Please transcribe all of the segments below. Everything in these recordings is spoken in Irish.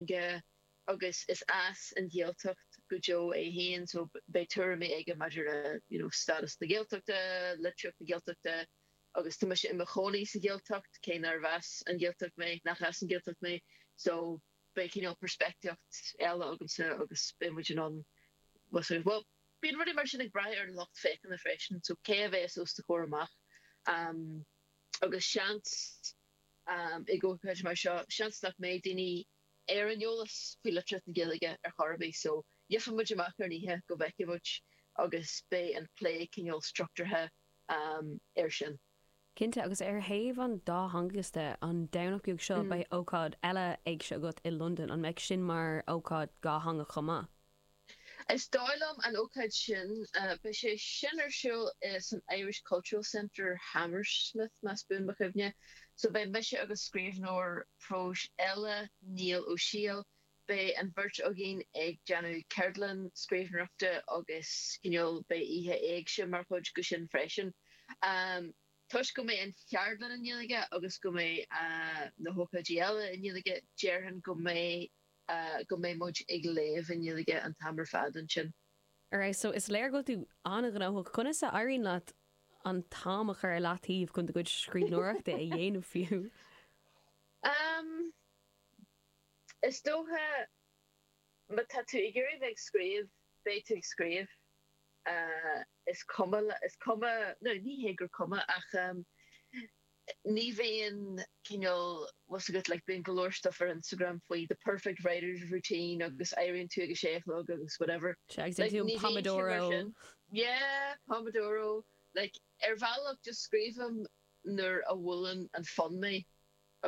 aige agus is as an Ghaeltacht go deo é féin so beidh tuairimí aige maidir le you know status na Gaeltachta, litríocht na Gaeltachta agus tá mise i mo chónaí sa Ghaeltacht cé nárbh as an Ghaeltacht mé, nach as an Ghaeltacht mé so beidh cineál peirspictíocht eile agamsa agus beidh muid in ann well sort of well bíonn rudaí mar sin ag braith ar an lucht féachana freisin so cé a bheidh os do chomhair amach um agus seans Ag ócáid mar seo, seans nach mbeidh daoine ar an eolas faoi litríocht na Gaeilge ar chor ar bith, so gheobhaidh muid amach ar an oíche go bhfeicfidh muid agus beidh an plé cineál struchtúrtha um air sin. Cinnte, agus ar thaobh an dátheangachais de, an Domhnach beag seo beidh ócáid eile éigse agat i Londain, an mbeidh sin mar ócáid dhátheangach chomh maith? Is dóigh liom an ócáid sin, beidh sé sin ar siúl san Irish Cultural Centre, Hammersmith, más buan mo chuimhne, so beidh mise agus scríbhneoir próis eile, Niall Ó Siadhail, beidh an bheirt againn ag déanamh ceardlann scríbhneoireachta agus cineál beidh oíche éigse mar chuid de sin freisin. Toisc go mbeidh an cheardlann i nGaeilge agus go mbeidh na hócáidí eile i nGaeilge, déarfainn go mbeidh. go mbeidh muid ag léamh i nGaeilge an t-am ar fad ansin. Alright, so is léir go bhfuil tú an-ghnóthach. Conas a éiríonn leat an t-am a chur i leataobh chun do chuid scríbhneoireachta a dhéanamh fiú? Am, is dócha má tá tú ag iarraidh bheith ag scríobh, beidh tú ag scríobh. Is cuma, is cuma, no, ní hé gur cuma ach ní bhíonn cineál, tá a fhios agat like bíonn go leor stuff ar Instagram faoi the perfect writer's routine agus éiríonn tú ag a sé a chlog agus whatever like ní bhíonn sé mar sin yeah Pomodoro like ar bhealach just scríobhaim nuair a bhuaileann an fonn mé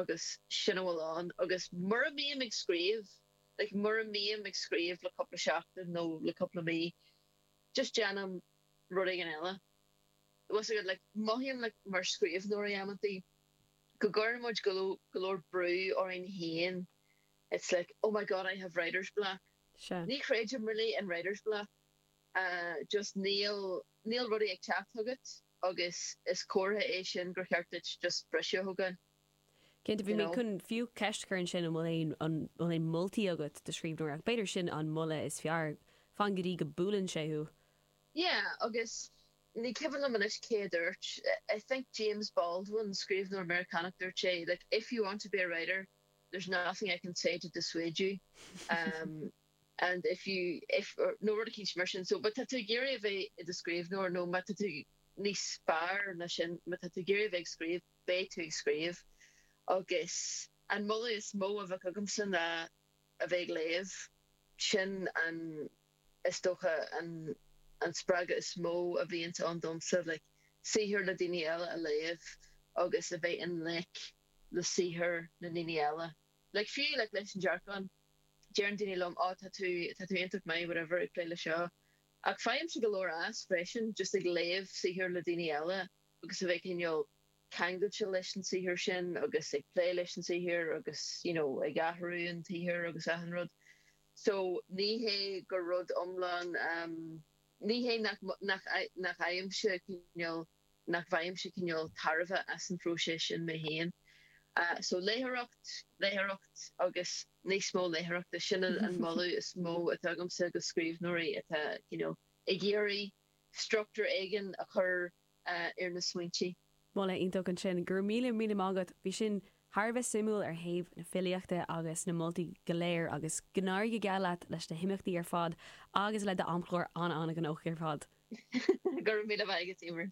agus sin a bhfuil ann agus mura mbím ag scríobh like mura mbím ag scríobh le cúpla seachtain nó le cúpla mí just déanaim rud éigin eile. Mothaím mar scríbhneoirí amantaí go gcuireann muid go leor brú orainn féin it's like oh my God I have writer's block sea. Ní chreidim really in writer's block just níl níl rudaí ag teacht agat agus is comhartha é sin gur cheart duit just briseadh a thógáil Cinnte, bhí mé chun fiú ceist a chur ansin an bhfuil aon an bhfuil aon mholtaí agat do scríbhneoirí ach? B'fhéidir sin an moladh is fearr, fan go dtí go buaileann sé thú. Yeah, agus ní cuimhin liom anois cé a dúirt, I think James Baldwin, scríbhneoir Meiriceánach, dúirt sé like if you want to be a writer, there's nothing I can say to dissuade you, um and if you, if, or nó rud eicínt mar sin. So má tá tú ag iarraidh a bheith i do scríbhneoir nó má tá tú níos fearr ná sin, má tá tú ag iarraidh a bheith ag scríobh, beidh tú ag scríobh. Agus an moladh is mó a bheadh agamsa ná a bheith ag léamh. Sin an. is dócha an an spreagadh is mó a bhíonns ann domsa like saothar le daoine eile a léamh agus a bheith i ngleic le saothar na ndaoine eile like fiú like leis an dearcán deireann daoine liom oh tá tú tá tú iontach maith whatever ag plé le seo ach faighimse go leor as freisin just ag léamh saothar le daoine eile agus a bheith cineál ceangailte leis an saothar sin agus ag plé leis an saothar agus you know ag athrú an tsaothair agus achan rud So, ní hé gur rud iomlán, ní hé nach, nach, nach fhaighimse cineál, nach bhfaighimse cineál tairbhe as an phróiseas sin mé féin. So, léitheoireacht, léitheoireacht agus níos mó léitheoireachta, sin an moladh is mó atá agamsa do scríbhneoirí atá, you know, ag iarraidh, struchtúr éigin a chur ar na smaointe. Moladh iontach ansin. Go raibh míle, míle maith agat. Bhí sin thar a bheith suimiúil ar thaobh na filíochta agus na moltaí go léir agus go n-éirí go geal leat leis na himeachtaí ar fad agus le d'amchlár an-an-ghnóthach ar fad. Go raibh míle maith agat, Emer.